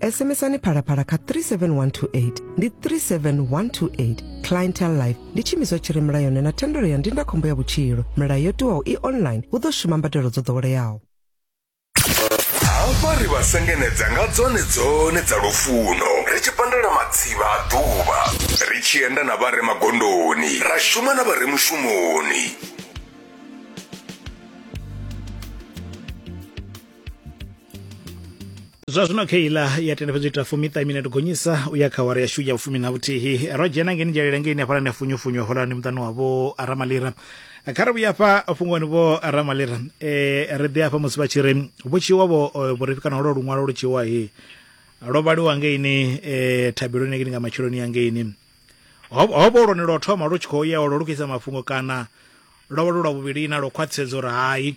SMSani phalaphala kha 37128 ndi 37128 clientele life ndi tshiimiswa tshi re mulayoni na thendelo ya ndindakhombo ya vhutshilo milayo yo tiwaho i online hu ḓo shuma mbadelo dzo ḓoweleaho hafha ri vha sengenedza nga dzone dzone dza lufuno ri tshi pandela matsivha a ḓuvha ri tshi enda na vha re magondoni ra shuma na vha re mushumoni zwa zwino kha iḽa ya tenda fhedzi ita fumiṱa minete gonyisa u ya kha wara yashu ya vhufumi na vhuthihi ro dzhena ngeni dzhelela ngeni hafhala ni funyufunywa holani muṱani wavho ramalira kha ri vhuya fha fhungoni vho ramalira e ri ḓi afha musi vha tshi ri vhutshivha vho vhurifhi kana holo luṅwalo lu tshiwa he lwo vhaliwa ngeini e thabeloni yangeni nga matsheloni yangeini hovho lwone lwo thoma lu tshi khou ya olo lu khou isa mafhungo kana lwo vha lu lwa vhuvhili na lwo khwaṱhisedza uri hai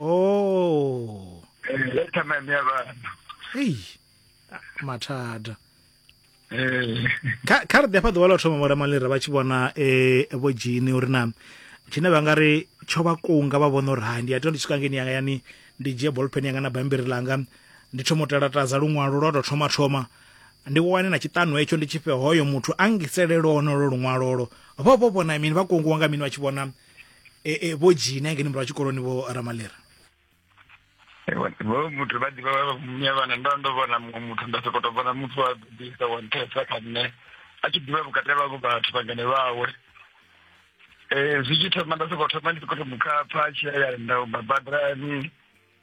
oh eh ya tama mya bana hey mathada eh kha kha ri ḓe fha ḓuvha ḽa u thoma vho ramalira vha tshi vhona eh vho dzhini uri na tshine vha nga ri tsho vha kunga vha vhona uri hai ndi ya tea ndi swika ngeni yanga yani ndi dzhie ballpen yanga na bambiri ḽanga ndi thoma u telatadza luṅwalo lwa tou thoma thoma ndi wane na tshiṱanu hetsho ndi tshi fhe hoyo muthu a ngiselele onolo luṅwalolo vho vho vhona mini vha kungiwa nga mini vha tshi vhona e, e, vho dzhina ngeni murahu tshikoloni vho ramalera vho muthu vha ḓivha vha vhana ndo ndo vhona muṅwe muthu nda sokou tou vhona muthu wa ḓisa wa nthesa kha nṋe a tshi ḓivha vhukati havho vhathu vhangane vhawe um zwi tshi thoma nda sokou thoma ndi sokou to mu khapha a tshi ya ya nda u babaḓani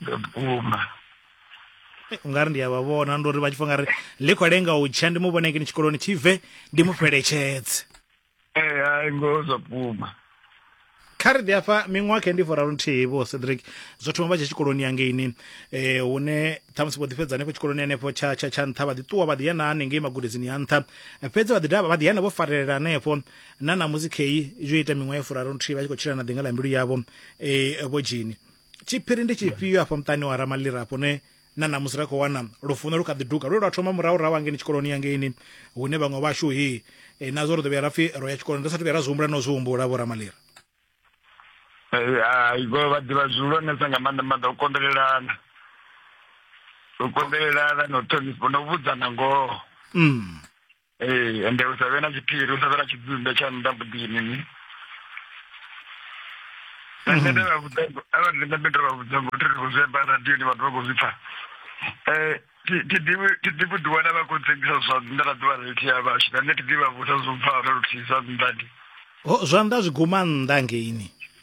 vhukuma eh, u nga ri ndi a vha vhona ndi uri vha tshi fo nga ri ḽi khou lenga u tsha ndi mu vhone kini tshikoloni tshi bve ndi mu fheletshedze ee eh, hai ngoho zwa vhukuma kha ri ḓi afha miṅwaha khe ndi foraru nthihi vho cedric zwo thoma vha tshe tshikoloni yangeini eh hune ṱhamusi vho ḓifhedza hanefho tshikoloni hanefho tsha tsha tsha nṱha vha ḓi ṱuwa vha ḓi yana hanengei magudedzini ya nṱha fhedzi vha ḓi dovha vha ḓi yana vho farelela hanefho na ṋamusi kheyi yo ita miṅwaha ya furaru nthihi vha tshi khou tshila na ḓinga ḽa mbilu yavho eh vho dzhini tshiphiri ndi tshifhio afha muṱani wa ramalira afho ne na ṋamusi ra khou wana lufuno lu kha ḓi duga lwe lwa thoma murahurahu angeini tshikoloni yangeini hune vhaṅwe vhashu hi e, nazwo ri ḓo vhuya ra pfi ro ya tshikoloni ri sa thu vhuya ra zwi humbula no zwi humbula vho ramalira hai vho vha ḓivha zwihulwanesa nga maanḓa maanḓa u konḓelelana u konḓelelana na u ṱhonifha na u vhudzana ngoho mm. ee ende hu sa vhe na tshiphiri hu sa vhe na tshidzumbe tsha nnḓa muḓini ni nṋe ndi vha vhudza arali ndi nga ndi tou vha vhudza ngo thiri khou zwi amba radioni vhathu vha khou zwi pfha um thi ḓivhi thi ḓivhi u ḓiwana vha khou tsengisa zwa nnḓa na ḓuvha reithi ya vhashu na nṋe thi ḓivha vhusa zwo mpfara luthihi zwa nnḓa ndi ho zwanḓa zwi guma nnḓa ngeini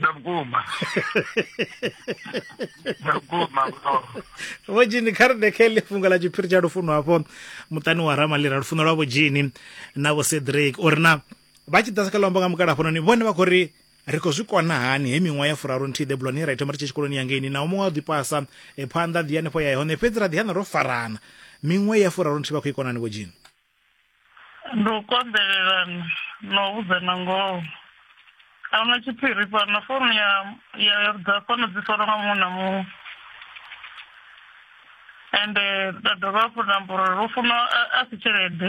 na vhukuma na vhukuma vho dzhini kha ri dekele funga ḽa tshiphiri tsha lufuno hafho muṱani wa ramalira lufuno lwa vho dzhini na vho cedric uri na vha tshi ḓasa kha luambo nga mukala hafhanoni vhone vha khou ri ri khou zwi kona hani he miṅwaha ya furaru nthihi ḓebuloni ra ithoma ri tshi tshikoloni yangeini naho muṅwe wa ḓi pasa e phanḓa ḓi hanefho ya hone fhedzi ra ḓi hana ro farana miṅwe ya furaru nthihi vha khou i konani vho dzhini ndi u konḓelelana na u vhudzana ngoho a huna tshiphiri fhano founu ya ya dza fhano dzi fara nga muṅwe na muṅwe ende nda dovha hafhu nda amba uri lu funa a si tshelede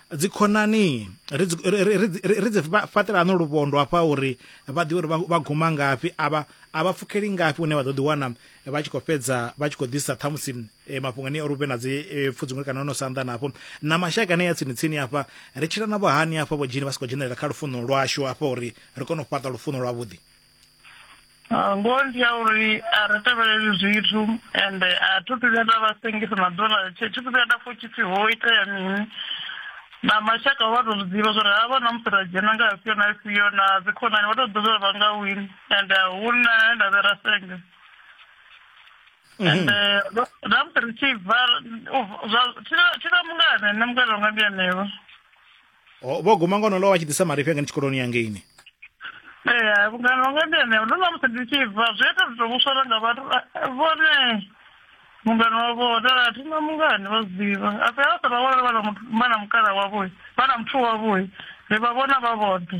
dzikhonani ri dzi- ri- ri- ri dzi- ri- ri dzi fa- fhaṱela ano luvhondo hafha uri vha ḓivhe uri vha- vha guma ngafhi a vha a vha pfukeli ngafhi hune vha ḓo ḓiwana vha tshi khou fhedza vha tshi khou ḓisa ṱhamusi eh, mafhungo ane uri hu vhe na dzi eh, pfudzungule kana ono sanḓa nafho na mashaka ane ya tsini tsini hafha ri tshila navho hani hafha vho dzhini vha si khou dzhenelela kha lufuno lwashu hafha uri ri kone u fhaṱa lufuno lwavhuḓi Ah, ngoho ndi ya uri a ri tevheleli zwithu ende a thi thu vhuya nda vha sengisa na ḓuvha ḽa thi thu vhuya nda pfha tshi pfi ho itea mini na mashaka vha to zwiḓivha zwori havha na musi ra dzhena nga afhio na afhio na dzikhonani vha to ḓivha zwori vha nga wini ende huna he nda vhe ra senga ende na musi ri tshi bva thi na mungana nṋe mungana wanga ndi anevha O, vho guma ngono lo vha tshi ḓisa marifhi anga ndi tshikoloni yangeini ee vhungana wanga ndi ene ndo na musi ndi tshi bva zwi ita zwi to vhuswara nga vhathu eh, vhone mungana wavho hodala a thina mungani vha zwi ḓivha a fhela vha sa vha vhona vha na muthu- vha na mukala wavho vha na muthu wavho ri vha vhona vha vhoṱhe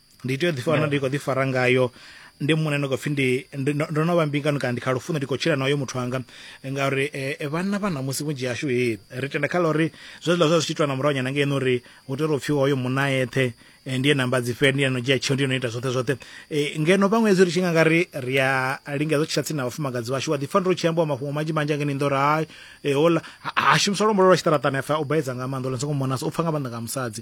ndi tea u ḓi fana ndi khou ḓi fara ngayo ndi muṋe no khou pfhi ndi ndi- ndo ndo no vha mbingano kana ndi kha lufuno ndi khou tshila nayo muthu wanga ngauri eh, eh, vhanna vha ṋamusi vhunzhi hashu he ri tenda kha ḽa uri zwezwiḽa zwa zwi tshi itwa na murahu nyana ngeno uri hu tea uri u pfhi hoyo munna a eṱhe eh, ndi ye namba dzi fhe ndi ye no dzhia tsheo ndi ye no ita zwoṱhe zwoṱhe Eh, ngeno vhaṅwe hezwi ri tshi nga nga ri ri a lingedza u tshila tsini na vhafumakadzi vhashu wa ḓi pfa ndi ri u tshi ambiwa mafhungo manzhi manzhi angeni ndo uri hai eh, hola ha- ha shumiswa luambo lwa tshiṱaraṱani a pfa u baedza nga maanḓa ola songo mona so u pfa nga maanḓa nga musadzi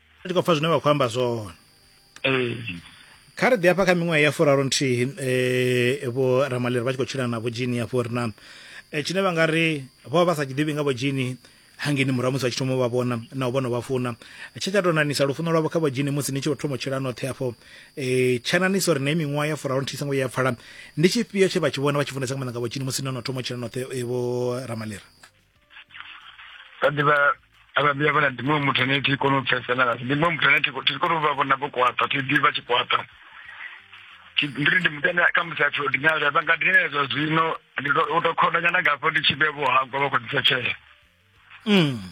ndi khou pfa zwine vha khou amba zwone ee kha ri ḓi hafha kha miṅwaha ya furaru nthihi um vho ramaleri vha tshi khou tshila na vho jini hafho ri na eh, tshine vha nga ri vho vha vha sa tshi ḓivhi nga vho jini hangeni murahu musi vha tshi thoma u vha vhona na u vhono vha funa tshe tsha tou nanisa lufuno lwavho kha vho jini musi ni tshi vho thoma u tshila noṱhe hafho um tsha nanisa uri na i miṅwaha ya furaru nthihi songo ya pfala ndi tshifhio tshe vha tshi vhona vha tshi funesa nga maanḓa nga vho jini musi no no thoma u tshila noṱhe eh, vho ramaleri vha ḓivha avha vhuya vha na ndi muṅwe muthu ane thi kona u pfesana ngasi ndi muṅwe muthu ane thi kona u vha vhona vho kwaṱa thi ḓivha tshi kwaṱa ndi ri ndi muthu ane kha musi apfi ordinary vha nga dinela zwa zwino ndi u to khonda nyana ngafho ndi tshi vhe vho hangwa vha khou ḓisa tshele mm.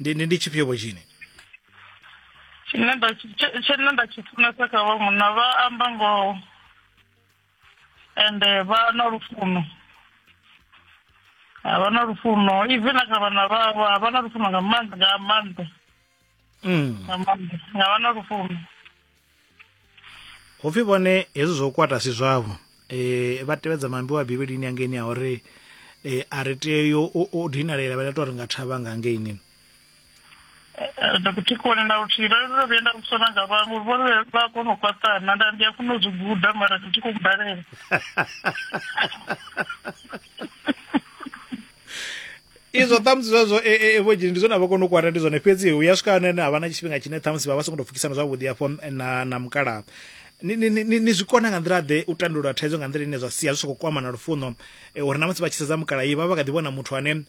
ndi ndi ndi tshifhio vho tshini tshine nda tshi- tshe- tshine nda tshi funesa kha vha munna vha amba ngoho ende vha na lufuno a vha na lufuno even na kha vhana vhavho a vha na lufuno nga maanḓa nga maanḓa mm. nga maanḓa nga vha na lufuno ho pfi vhone hezwi zwo kwata si zwavho eh vha tevhedza mambi wa bivhilini angeini a uri eh a ri tea u dinalela vha tou ri nga thavha nga angeini ndakuthikhona na luthihi vha ndo vhuya nda vhusona nga vhaṅwe vho vha kona u fhaṱana nda ndi a funa u zwi guda mara ndi tshi khou balela izwo ṱhamusi zwazwo e, e, e, vho dzhini ndi zwone a vha kona u kwata ndi zwone fhedzi hu ya swika hone ha vha na tshifhinga tshine ṱhamusi vha vha songo tou pfukisana zwavhuḓi hafho na na mukalaha ni, ni, ni, ni- ni zwi kona nga nḓila ḓe u tandulula thaidzo nga nḓila ine zwa sia zwi soko kwama na lufuno e, uri na musi vha tshi sedza mukalahi vha vha kha ḓi vhona muthu ane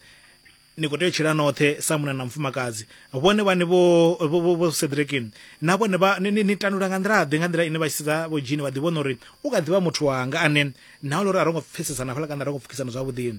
ni khou tea u tshila noṱhe sa muna na mufumakadzi vhone vhane vho vho- vho- vho sedrekini na vhone vha ni- ni ni tandulula nga nḓila ḓe nga nḓila ine vha tshi sedza vho dzhini vha ḓi vhona uri u kha ḓivha muthu wanga ane na ule uri a ro ngo pfesesana fhala kana a ro ngo pfukisana zwavhuḓi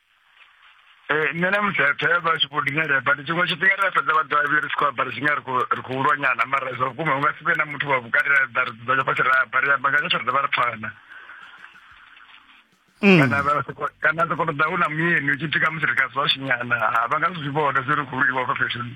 Eh, nṋe na mudzapfa ya vha tshi khou dingelela but tshiṅwe tshifhinga ri a fhedza vha ḓovha vhe ri si khou amba ri tshi nga ri khou- ri khou lwanyana mara zwa vhukuma hu nga si vhe na muthu wa vhukati ra ḓa ri dzudzanya fhasi ra amba ri amba nga tsho ri dovha ri pfana Mm. kana vha soko- kana soko ṱoḓa hu na muyeni u tshi pfhi khamusi ri ka zwa shinyana ha vha nga zwi vhona zwi ri khou lwiwa fha feshoni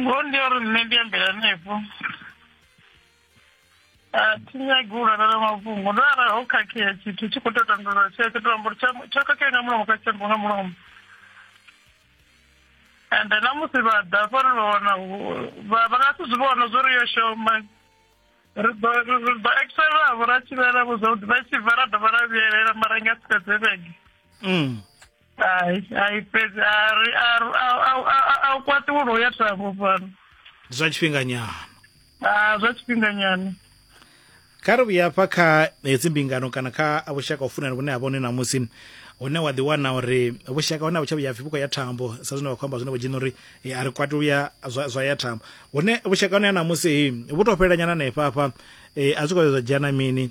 ngoho ndi ya uri nṋe ndi ambela hanefho a thi nyagi u lalala mafhungo ndo arali ho khakhea tshithu tshi khou tou tandulula tshoṱhe to amba uri tsha- tsho khakhea nga mulomo kha tshiambo nga mulomo ende na musi vha ḓa fhano vha wana hu- vha vha nga si zwi vhona zwo ri yo shoma ri ḓo ri- ri ḓo excelavho ra tshivhelavho zwavhuḓi vha tshi bva ra dovha ra vhuyelela mara nga si fhedze vhege Mm. hai hai fhedzi a u kwaṱuwulo u ya thavho fhano ndi zwa tshifhinganyana a zwa tshifhinganyana kha ri vhuya hafha kha hedzi mbingano kana kha vhushaka u funana vhune ha vha hone ṋamusi hune wa ḓiwana uri vhushaka hone a vhu tsha vhuya pfhi vhu khou ya thambo sa zwine vha khou amba zwine vho dzhena uri a ri kwati luya zwa ya thambo hune vhushaka hone ha ṋamusi vhu tou fhelelanyana hanefha hafha a zwi khou ya zwa dzhia na mini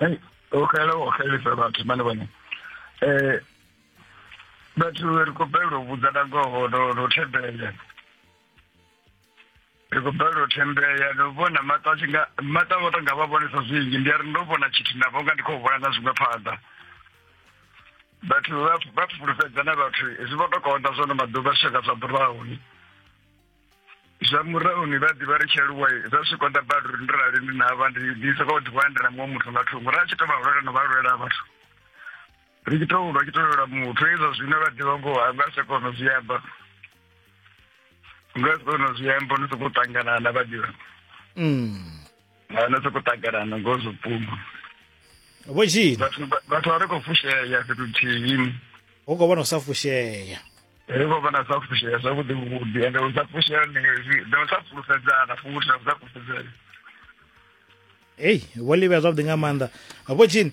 Hey, o khala o khalisa vhathu mane vhone eh vhathu ri khou balelwa u vhudza na ngoho no no thembela ri khou balelwa u thembela no vhona maṱo a tshi nga maṱo a vho to nga vha vhonesa zwinzhi ndi a ri ndo vhona tshithu na vho nga ndi khou vhona na zwiṅwe phanḓa vhathu vha fulufhedza na vhathu zwi vho to konḓa zwono maḓuvha zwi tshaka zwa ḓuraho ni zwa murahu ni vha ḓivha ri tshi aluwa zwa zwi konḓa badi uri ndi rali ndi navha ndi soka u ḓiwana ndi na muṅwe muthu nga thungo ra tshi to vha lwela no vha lwela vhathu ri tshi to lwa tshi to lwela muthu hezwo zwine vha ḓivha ngoho a nga si kona zwi amba nga si kona zwi amba ni sokou ṱangana na vha ḓivha mm. ha na soko takalana ngo zwo puma vho tshini vhathu vha- vhathu vha ri khou fushea fhethu thihi hu khou vhona u sa fushea ri khou vhona sa fushea zwavhuḓi vhuḓi ende u sa fushea ndi zwi- ndi u sa fulufhedzana futhi na u sa fulufhedzana ei vho livhea zwavhuḓi nga maanḓa vho tshini